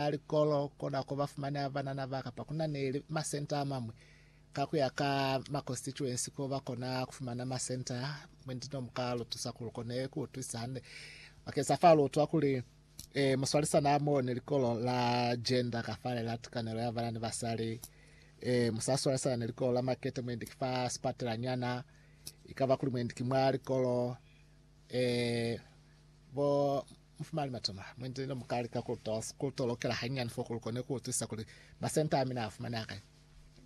a likolo kona ko ba fumanea banana ba kapa ku na ni masenta a mamwi ka ku ya ka ma constituency ko ba kona ku fumana masenta mwendi no mu ka lu tusa ku lu kone ku utwisisa hande bakeng sa fa lu utwa kuli eh, muswalisana amoo ni likolo la gender kafale la tikanelo ya bana ni basali eh, musaswalisana ni likolo la makete mwendi ki fa sipatela nyana ikaba kuli mwendi ki mwa likolo eh, bo Mufumani matuna, mwendi ne mukalika kutolokela hanyinyani fo kuli kone kuutwisisa kuli masenta amina afumaneha kai.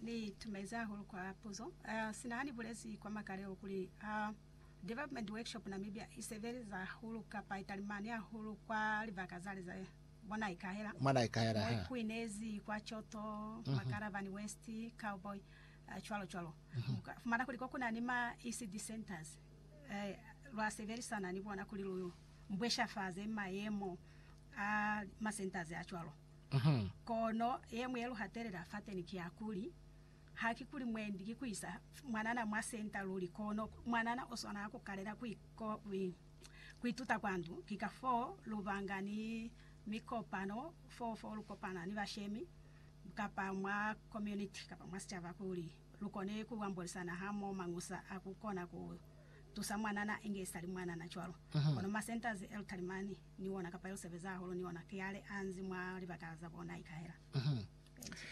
Ni itumezi hahulu kwa puzo. Sina hani bulezi kwa makalelo kuli Development Workshop Namibia isebeleza hahulu kapa italimani hahulu kwa libaka zale za bo Naikahela, Mwa Naikahela, mo ikuinezi kwa Choto, mwa Karavani West, Cowboy, cwalo cwalo. Muka fumana kuli ko kuna ni ma ECD centers, lwa sebelisana ni bona kuli lu mbweshafaze mayemo a masentazi a cwalo. Kono yeñwi ye lu hatelela fateni ki ya kuli, Haki kuli mwendi ki ku isa mwanana mwa senta luli, kono mwanana o swanela ku kalela ku ituta kwa ndu. Ki kafoo lu banga ni mikopano foo fo lu kopana ni bashemi kapa mwa komuniti kapa mwa sicaba kuli lu kone ku ambolisana hamoho mañusa a ku kona ku tusa mwanana inge isali mwanana cwalo. Kono ma centers e lutali mani ni ona kapa yo sebeza hahulu ni ona kiale a nzi mwa libaka za bo naikahela. Benji.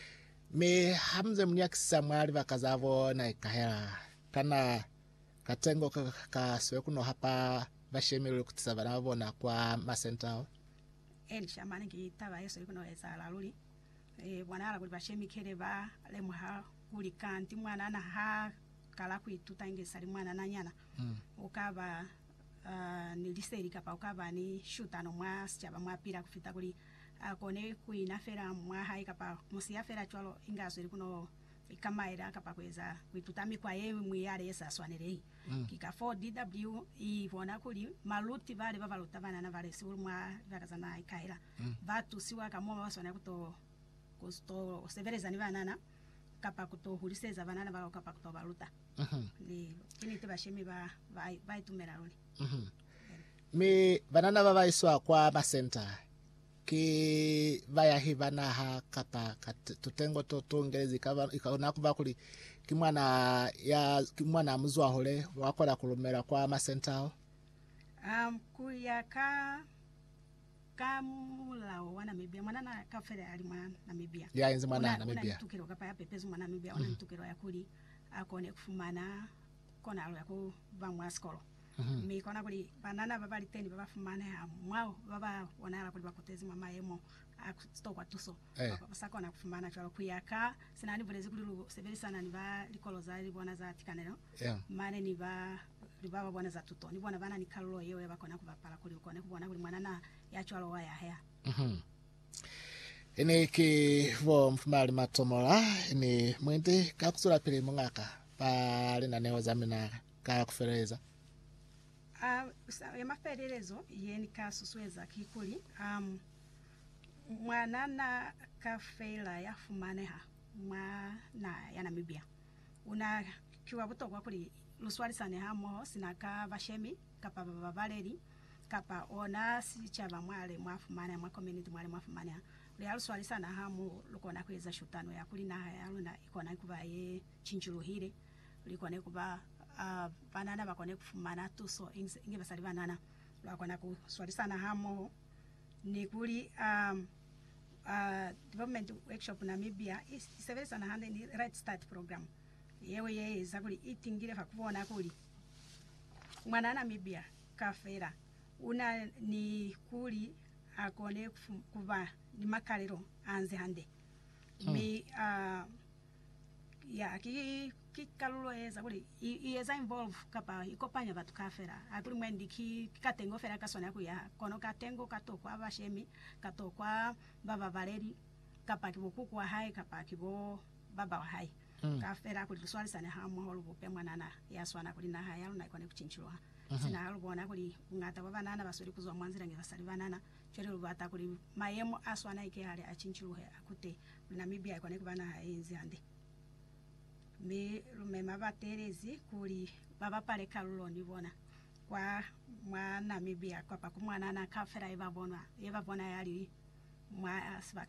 Mi ha mu nze mu nyakisisa mwa libaka za bo naikahela, kana katengo ka ka swe ku no hapa bashemi luli ku tisa bana ba bona kwa ma center ao? Elisha, Mane ki taba ye swe ku no ezahala luli. I bonahala kuli bashemikele ba lemuha kuli kanti mwanana ha kala ku ituta inge sa li mwanananyana, u ka ba ni liseli kapa u ka ba ni shutano mwa sicaba mwa pila ku fita kuli a kone ku ina fela mwa hae kapa ku mu siya fela cwalo inge a zweli ku no ikamaela kapa ku eza ku ituta mikwa ye ñwi yale ye sa swanelehi. Ki ka foo DW i bona kuli maluti bale ba ba luta banana ba lisihulu mwa libaka za naha i kahela, ba tusiwa ka mo ba ba swanela ku to ku to sebeleza ni banana, kapa ku to huliseza banana bao kapa ku to ba luta. Ni ki niti bashemi ba ba ba itumela luli. Mi banana ba ba iswa kwa masenta Ki bayahi ba naha kapa tutengo to tu ngelezi. I kona kuba kuli ki mwana ya ki mwana muzwahule wa kona ku lumelwa kwa masenta ao. Um, ku ya ka ka mulao wa Namibia mwanana kafele ali mwa Namibia Ya enzi mwana Una- una Namibia. ni tukelo kapa ya pepezi mwa Namibia una ni tukelo ya kuli a kone ku fumana kona aluya ku ba mwa sikolo, mi kona kuli banana ba ba li teni ba ba fumaneha mwao ba ba bonahala kuli ba kutezi mwa mayemo a ku tokwa tuso, kapa ba sa kona ku fumana cwalo ku ya ka se na ni bulezi kuli lu sebelisana ni ba likolo za li bona za tikanelo mane ni ba li ba ba bona za tuto, ni bona ba na ni kalulo yeo ya ba kona ku bapala kuli lu kone ku bona kuli mwanana ya cwalo wa yahea. Ini ki bo Mfumali Matomola, ini mu indi ka ku zwelapili, Muñ'a ka? Ba linaneo za mina ka kufeleza. A ya mafelelezo ye ni ka susueza kikuli, ha mwana na ka fela ya fumaneha mwa naha ya Namibia, u na ki wa butokwa kuli lu swalisane hamoho sina ka bashemi kapa bababaleli kapa ona sicaba mwale mwa fumaneha, mwa community mwale mwa fumaneha. Kuli ha lu swalisana hamoho, lu kona ku eza shutano ya kuli naha ya luna i kona ku ba ye cinjuluhile li kone ku ba a banana ba kone ku fumana tuso inge basali banana ba kona ku swalisana hamoho ni kuli a a Development Workshop Namibia i sebelisana hande ni Red Start Program yeo ye eza kuli i tingile fa ku bona kuli mwana Namibia kafela u na ni kuli a kone ku ba ni makalelo a nzi hande mi a Ya, ki, ki kalulo yeza kuli i, i yeza involve kapa i kopanya batu kaafela. Hakuli mwendi ki, ki katengo fela ka swanela kuyaha, kono katengo ka to kwa bashemi, ka to kwa bababaleli, kapa ki bo kuku wa hae kapa ki bo baba wa hae. Kaafela kuli luswalisane hamoho lubupe mwanana ya swana kuli naha ya luna ikone kucinciluha. Sina ha lubona kuli bungata bwa banana basweli kuzwa mwa nzila ni basali banana, cwale lubata kuli mayemo a swana ikehale a cinciluhe, akute Namibia ikona kuba naha yeinzi hande, mi lumema batelezi kuli babapale kalulo ni bona kwa mwa Namibia kwapa kumwanana kaufela yebabona yali mwa sibaka mo.